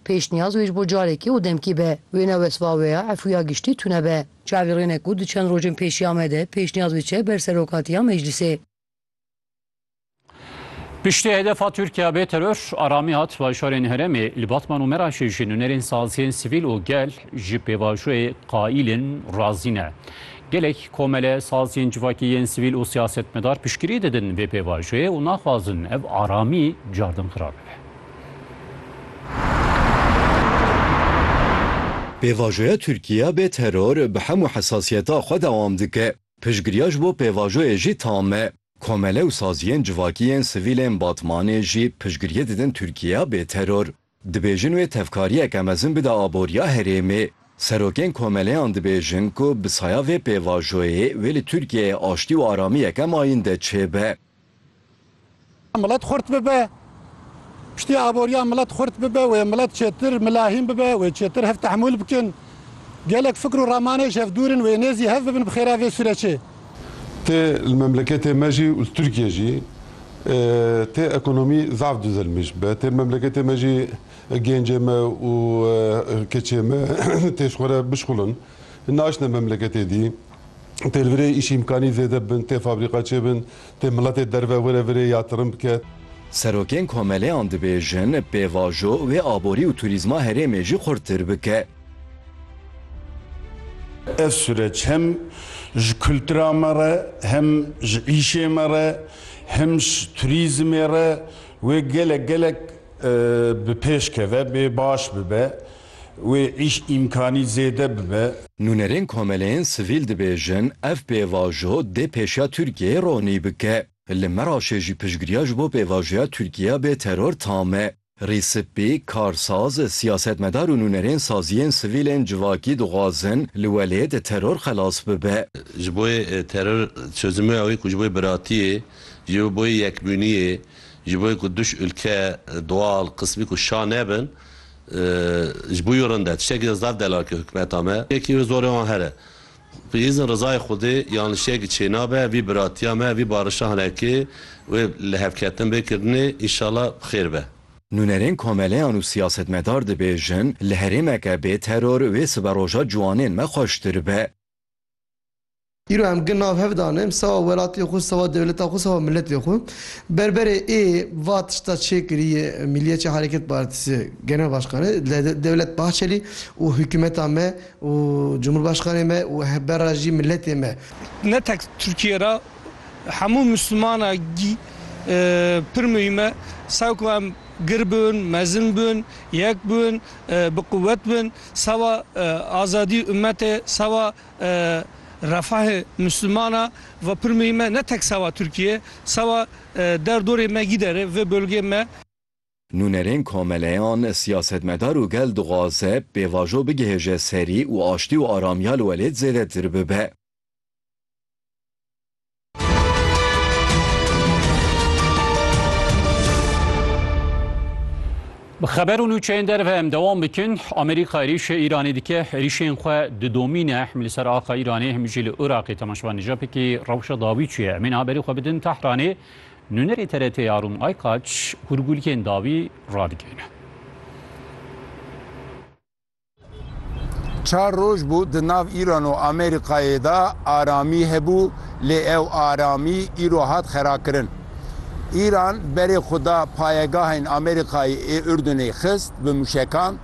Pêşniyaz wê ji bo carekê û demkî be. Wêne wesva wê ya efuya giştî tune be. Çavîrêne ku di çend rojên pêşiya me de pêşniyaz biçe ber Serokatiya Meclîsê. Piştî hedefa Tirkiya bê teror, aramî hat bajarên herêmê. Li Batman û Meraşê jî nûnerên saziyên sivîl û gel ji pêvajoyê qayîl in, razî ne. Gelek komele saziyên civakî yên sivîl û siyasetmedar piştgirî didin vê pêvajoyê û naxwazin ev aramî cardim xirab bibe. Pêvajoya Tirkiye bê teror bi hemû hesasiyeta xwe dewam dike. Piştgiriya ji bo pêvajoyê jî tam e. Komele û saziyên civakî yên sivîlên Batmanê jî piştgiriyê didin Tirkiyeya bê teror. Dibêjin wê tevkariyeke mezin bide aboriya herêmê. Serokên komeleyan dibêjin ku bi saya vê pêvajoyê wê li Tirkiyeyê aştî û aramiyeke mayinde çêbe. Milet xurt bibe, piştî aboriya milet xurt bibe wê milet çêtir milahîm bibe, wê çêtir hev tehmûl bikin. Gelek fikr û ramanê ji hev dûr in, wê nêzî hev bibin bi xêra vê sûreçê. Tê li memleketê me jî û li Tirkiyê jî tê ekonomî zaf duzilmîş be. Tê memleketê me jî gêncê me û keçê me tê ji xwe re bişxulin, naçine memleketê dî. têrvirê îşî îmkanî zêde bibin, tê fabrîka çêbin, tê miletê derve were virê ya tirin bike. Serokên komeleyan dibêjin, pêvajo wê aborî û turîzma herêmê jî xurttir bike. Ev sureç hem ji kultura me re, hem ji îşê me re, hem ji turîzmê re wê gelek gelek bi pêş keve, bê baş bibe. wê îş îmkanî zêde bibe. Nûnerên Komeleyên Sivîl dibêjin ev pêvajo dê pêşiya Tirkiyeyê ronî bike. Li Meraşê jî piştgiriya ji bo pêvajoya Tirkiye ya bê teror tame. Rîsipî, karsaz, siyasetmedar û nûnerên saziyên sivîl ên civakî dixwazin li welê di teror xelas bibe. Ji bo yê teror çozimê ew e ku ji bo yê biratiyê, ji bo yê yekbûniyê, ji bo yê ku duş ûlke, dual, qismî ku şa nebin, Ji bo wî rind e. Tiştekî li zaf delal kir hikûmeta me. Yekî wê zorê wan here. Hîzin Rizayê Xwedê yan li şêkî çênabe, vî biratiya me, vî barişa hinekê wê li hevketin bê kirdinê, înşala bi xêr be. Nûnerên komeleyan û siyasetmedar dibêjin, li herêmeke bê teror wê siberoja ciwanên me xweştir be. Îro em gin nav hev dane, sewa welatê xwe, sewa dewleta xwe, sewa miletê xwe. Berberê ê va tişta çê kiriye Milliyetçi Hareket Partisi Genel Başkanê Devlet Bahçelî û hikûmeta me û Cumhurbaşkanê me û hevber re jî miletê me. Ne tek Tirkiye re hemû Misilmana gî pir muhîm e. Ser ku em gir bin, mezin bin, yek bin, bi quwet bin. Sava azadî umetê, sava refahê Musliman a va pir muhîm e, ne tek sava Tirkiyeyê, sava der dorê me gider e, vê bölgê me. Nûnerên komeleyan, siyasetmedar û gel dixwaze pêvajo bigihêje serî û aştî û aramiya li welêt zêdetir bibe. Bi xeber û nûçeyên derve em dewam bikin. Amerîka êrîşê Îranê dike, êrîşên xwe didomîne hem li ser axa Îranê hem jî li Iraqê temaşevan Nijapekî rewşa dawî çiye. Em ê haberê xwe bidin Tehranê. Nûnerê TRT Arûn Aykaç hûrgûlkên dawî radikevin. Çar roj bû di nav Îran û Amerîkayê de aramî hebû lê ew aramî îro hat xerakirin. Îran berê xwe da payegahên Amerîkayê ê Urdunê xist bi mûşekan,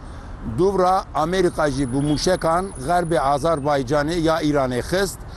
dûvra Amerîka jî bi mûşekan xerbê Azerbaycanê ya Îranê xist.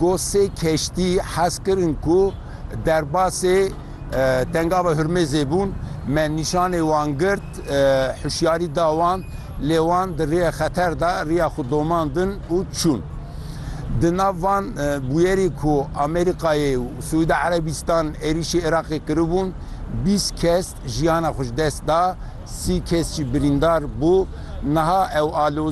Go sê keştî hez kirin ku derbasê Tengava Hurmêzê bûn. Me nîşanê wan girt, hişyarî da wan lê wan di rêyê xeter de rêya xwe domandin û çûn. Di nav van bûyerî ku Amerîkayê û Siûdî Erebîstan êrîşî Iraqê kiribûn, bîst kes jiyana xwe ji dest da, sî kes jî birîndar bû. Niha ew